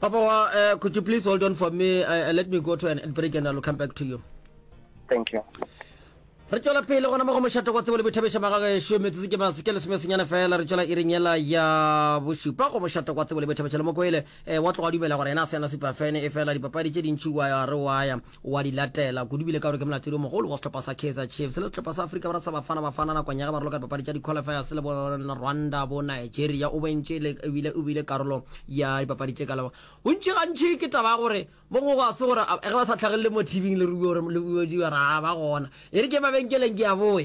Papa wa, uh, could you please hold on for me? Uh, let me go to an break and I'll come back to you. Thank you. re tswela pele gona mo go mošato kwa tsebo le boithabiša magagešo metsotso ke maso ke lesomesenyana fela re tswela iring yela ya bošupa go mošato kwa tsebo le boithabiša le mokoele um eh, wa tloga dumela gore yena a se yana supa fene e fela dipapadi tše dintši wa re waya wa di latela kudu bile ka gore ke molatedi o mogolo wa sehlopha sa kaizer chiefs le sehlopha sa afrika borwa sa bafana bafana nakong ya ge ba roloka dipapadi tša di-qualifiers le bo rwanda bo nigeria o bentše ebile o bile karolo ya dipapadi tše kalo bontši gantši ke taba ya gore mo gongwe ga se gore ge ba sa tlhagelele mo tv le ruo re ba gona e re ke mabenkeleng ke ya boe